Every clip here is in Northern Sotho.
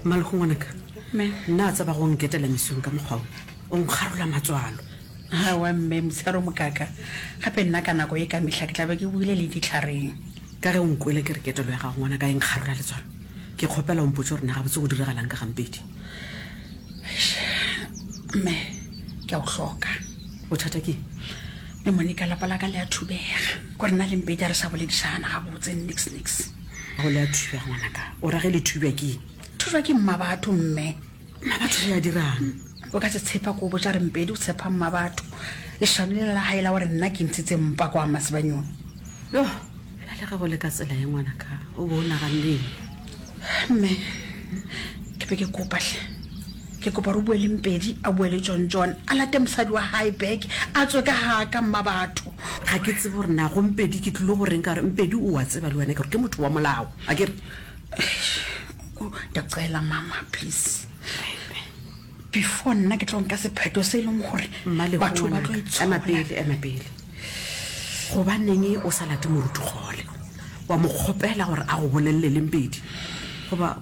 mmalego ngwanaka nna a tseba go nketela mesong ka mokgwao o nkgarola matswalo awa mme mosaro mokaka gape nna ka nako e ka mehla ke tlabe ke buile le ditlhareng ka ge o nkwele ke re ketelo ya gago ngwana ka e nkgarola letswalo ke kgopela o mpotse gore na gabotse go diragalang ka gampedi mme ke a o hloka bothata ke mme monica lapa la ka le a thubega gore na le mpedi a re sa boledišana gabotse nix nix go le a thubja ngwanaka o ra ge le thubja ke thubja ke mma batho mme mma batho re a dirang o ka se tshepa ko botsa re mpedi o tshepa mma batho lešano le la gae la gore nna ke ntshitse mpa kwa masebanyong yo ba le gago le ka tsela ye ngwanaka o bo o naganeng mme ke be ke kopatlhe Ke kopa re boeleng pedi, a boele John John, a late mosadi wa hae back, a tswe ka haa ka mmabatho. Ga ke tsebe gore na go Mpedi ke tlilo go reng ka gore Mpedi o a tseba le wena ke gore ke motho wa molao, a ke re. Eish, oh, ndiyacela mama please, before nna ke tlo nka sepheto se e leng gore Mmalehu batho ba tlo ngwanaka, ema itshola. pele, ema pele. Gobaneng o sa late moruti kgole, wa mo kgopela gore a go bolelele Mpedi? Goba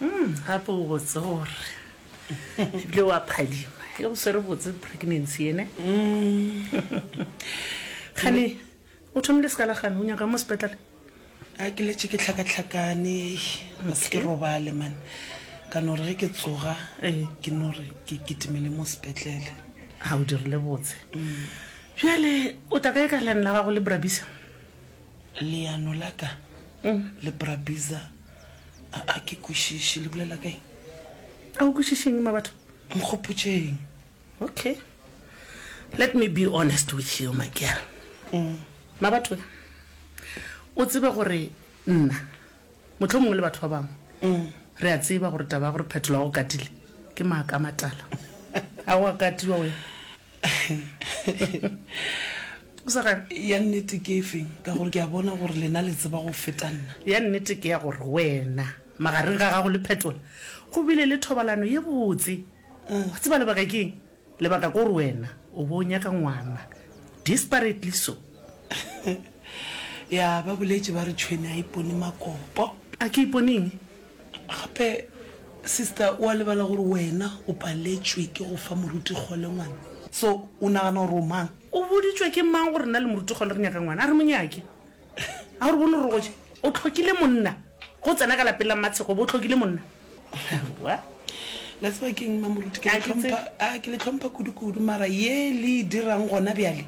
Umm gape o botse gore ebile wa phadima e go swere botse pregnancy yene kgane o thomile seka la gane o nyaka mo sepetlele a ke letse ke tlhakatlhakane ga se ke robale man ka no re ge ke tsoga ke no re ke kitimele mo sepetlele ga o dirile botse bjale o tla ka e ka lane la gago le brabisa Leano la ka le Brabiza a a ke kwešiše le bolela kae? A o kwešišeng ma batho? Nkgopotšeng. Okay. Let me be honest with you, my girl. Mm. Ma batho, o tsebe gore nna, motlho mongwe le batho ba bangwe, mm. re a tseba gore taba ya gore phetola go katile, ke maaka matala. A o a katiwa wena? O sa gane? ya nnete ke e feng ka gore ke a bona gore lena le tseba go feta nna Ya nnete ke ya gore wena magareng ga gago le Phetola go bile le thobalano ye botse. Wa tseba lebaka ke eng? Lebaka ke gore wena o bo o nyaka ngwana, desperately so. ya ba boletše ba re tšhwene a ipone makopo. A ke ipone eng? Gape, sister, o a lebala gore wena o paletšwe ke go fa moruti-kgole ngwana. So, o nagana gore o mang? O boditšwe ke mang gore nna le moruti-kgole re nyaka ngwana? A re mo nyake. A o re bone gore go je? O tlhokile monna. Ge o tsena ka lapeng la Mmatshego, o be o tlhokile monna. Aowa. La tseba ke'ng, Mmamoruti? Ke le tlhompha, ke le tlhompha kudu-kudu, mara ye le e dirang gona bjale,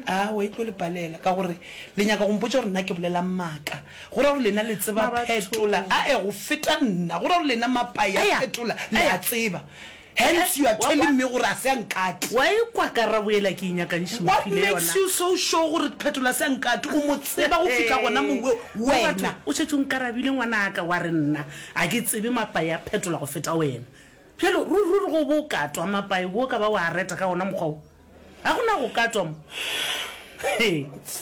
Aa, o a etlo le palela ka gore le nyaka go mpotša gore nna ke bolela maaka. Go ra gore lena le tseba phetola, ae, go feta nna. Go ra gore lena mapa ya phetola le a tseba. Hence you are telling me gore a se a nkate. Wa ekwa karabo yela ke e nyakantšhe o What mphile makes yona. you so sure gore phetola a se a nkate? O mo tseba go fihla gona mo we, Wa batho, wena. O šetše o nkarabile ngwanaka wa re nna a ke tsebe mapa ya phetola go feta wena. Bjale ruri ruri ge o bo o katwa mapa e bo o ka ba wa a reta ka gona mokgwa wo? Ga go na go ka tswa mo.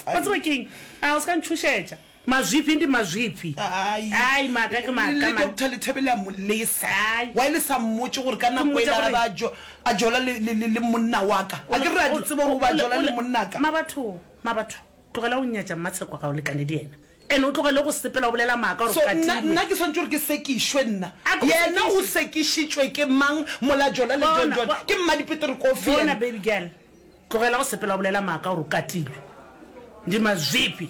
Wa tseba ke eng? A o se ka ntšhošetša. Mazwiphi ndi mazwiphi. Ai, maaka ke maaka le man. doctor lethebele a mo lesa Ai. why le sa mmotse gore ka Ke nako mmotša ele gore- a jo- a jola le- le le- le monna wa ka a ke re a di tseba gore o ba jola le monna ka Mabatho, Mabatho, tlogela go nyatša mmatshekwa ga o lekane le yena. And o tlogele go sepela o bolela maaka gore o katilwe. So nna, nna ke swantše gore ke sekišwe nna? A ke go sekiše. Yena o sekišitšwe ke mang mola Jola le John John? Ke mmadipete re kofi yena? Bona baby girl, tlogela go sepela o bolela maaka gore o katilwe. Ndi mazwifhi.